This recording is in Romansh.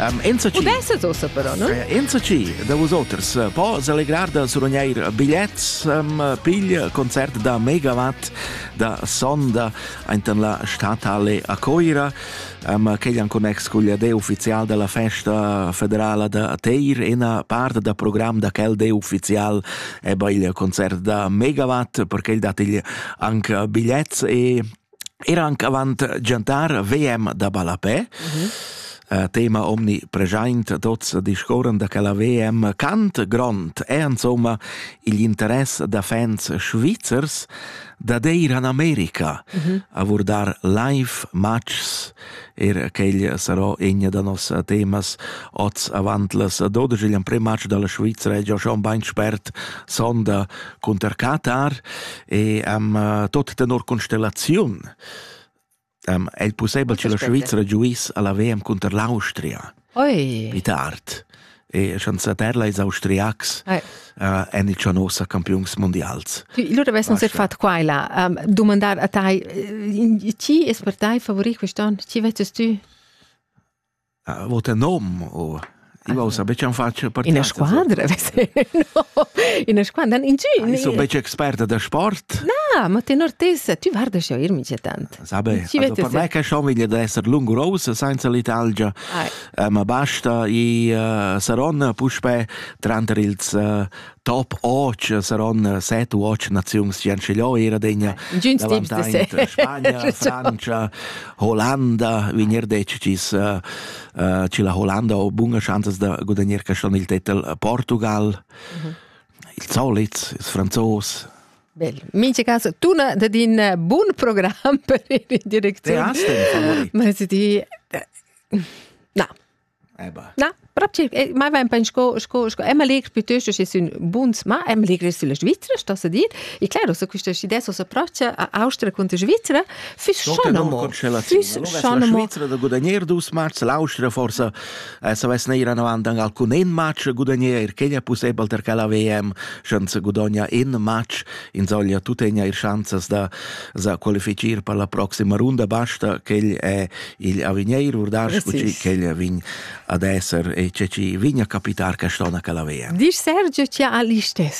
Um, enzatgi... Udesses ossa però, no? Eh, enzatgi da vosoters eh, po selegrar da surogneir biglets, um, pigl concert da megawatt da sonda aintan la statale a Coira, um, quegli en connex col dei ufficial della festa federala da Teir, ena part da program da quel dei ufficial è il concert da megawatt, perché il dat il anche biglets e Ir anc avant giantar VM da ballapè. Uh, tema omnipreschaint tots discorren da quella VM Cant grond è insomma il interess da fans svizzers da deir an Amerika mm -hmm. a vurdar live matchs Era quella sarà egna da nossa temas oz avant las dodesch igl emprem matg dalla Svizra e già schon bein spert sonda cunter Katar e am uh, tot tenor constellaziun um, è possibel che la Svizra giuiss alla WM cunter l'Austria? Oi. Id art. E chanzà terla ils austriacs eh. uh, en il Cianossa campiuns mondials. Lura avessi nus fatto qua e là. Um, domandar a tai, eh, chi è per tai favorit quest'anno? Chi vestes tu? Uh, vota nom o... Io sa becca un faccio partita. In squadra, no. In squadra, in giù. Ah, io sono becca esperta da sport. No, ma tenor tessa, tu guarda schon, io mi c'è tanto. Sabe, also per me che schon veglia da esser lungurosa senza l'Italgia, eh, ma basta i uh, saron puspe tranter ils uh, top 8 saron 7 u 8 nazions che scegliò era degna Spagna, Francia, Holanda, vinir dec cis uh, uh, ci la Holanda ho bunga chances da gudagnare schon il titel Portugal. Mhm. Il solits, ils franzos, Bel. Mincha cas tuna dat in eh, bun program per ir in direcziun. Te hast den Ma se di Na. Eba. Na, proprio eh, mai vain pen sco sco sco Emma Legr piuttosto che sun buns, ma Emma Legr sulla Svizzera sta sa dir. E claro, so questa idea so s'approccia a Austria contro Svizzera, füss schon amo. Füss schon amo. La Svizzera da guadagnar dus marz, l'Austria forse SOS neir anavant an alcun en match gudagner, quegna pussebel ter quella VM, schanza gudogna en match, insoglia tuttegna ir schanzas da, da qualificir per la proxima runda, basta quel è il avigneir, urdas, quel vin ad esser e ce ci vigna capitar che stona quella VM. Disch Sergio, ci ha l'istes.